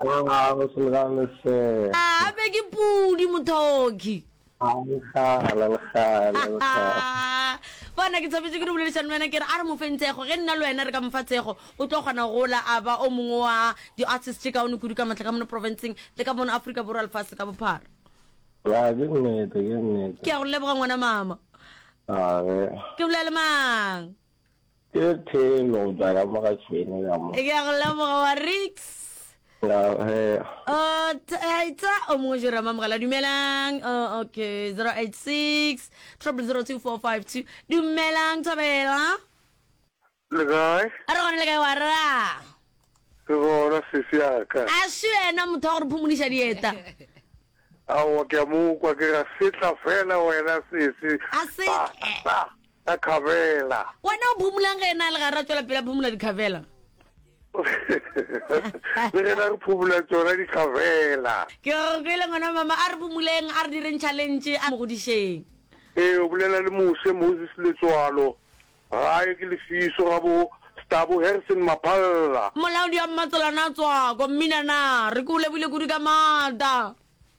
Go ga go se lebale sir. Aa be ke pudi mothoki. A legala legala legala. Bona ke thabetše ke no boledišana le wena ke re a re mo feng tsego ge nna le wena re ka mo fa tsego o tlo kgona go gola a ba o mongwe wa di-artist tše kaone kudu ka maatla ka mono provinceng le ka mono Afrika Borwa lefase ka bophara. Ya ke nnete ke nnete. Ke a go leboga ngwana mama. Aa ge. Ke bolela le mang? Ke Theno, ke a lemoga Theno ya mo. Ke a go lemoga wa Rix. Oh, Taita o mongwe jere mamogela dumelang. Oh, okay, 086 002452. Dumelang Thobela. Le kae? A re gone le kae wa ra? Ke gona sesi ya ka. A se wena motho wa go re phumoniša dieta. Aowa ke a mo kwa ke ra setla fela wena sesi. A se. Ka khabela. Wena o phomolang ge ena a le gare a tšwela pele a phomola dikhabela? Le gena re phomola tsona dikhabela. Ke go kwele ngwana mama, a re phomoleng, a re direng tšhalentše, a mo godišeng. Ee, o bolela le Moshe Moses Letsoalo, gae ke Lefiso ga bo Stabo Harrison Maphalla. Molaodi wa Mmatselane a Tswako, Mmina na, re ke o lebohile kudu ka maata.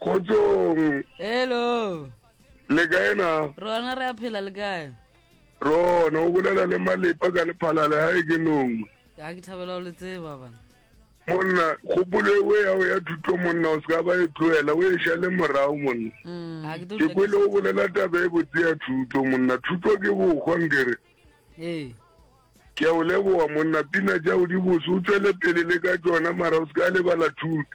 Kgotsong. Hello. Le kae na? Rona re a phela le kae? Rona o bolela le malepa ka lephalale ha e ke nong. Ya ke thabela o le tseba bana. Monna kgopolo ewe ya o ya thuto monna o ska ba e tlohela o e shale morao monna. Mm. Ke kwele o bolela taba e botse ya thuto monna thuto ke bokgwa nkere. Ee. Ke a o leboga monna pina ja o di boso o tswele pele le ka tsona mara o ska lebala thuto.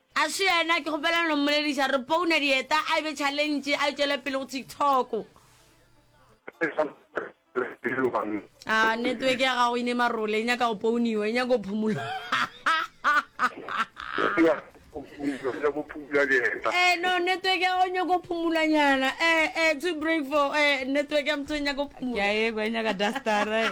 A se yena, ke kgopela no mmolediša, re pouna dieta, a e be challenge, a e tšwele pele go TikTok. A network ya gago e ne marole, e nyaka go pouniwa, e nyaka go phumula. Eh, no, network ya gago e nyaka go phumula nyana, eh, eh, to break for, eh, network ya motho e nyaka go phumula. Ke a e kwa, e nyaka dustara, eh.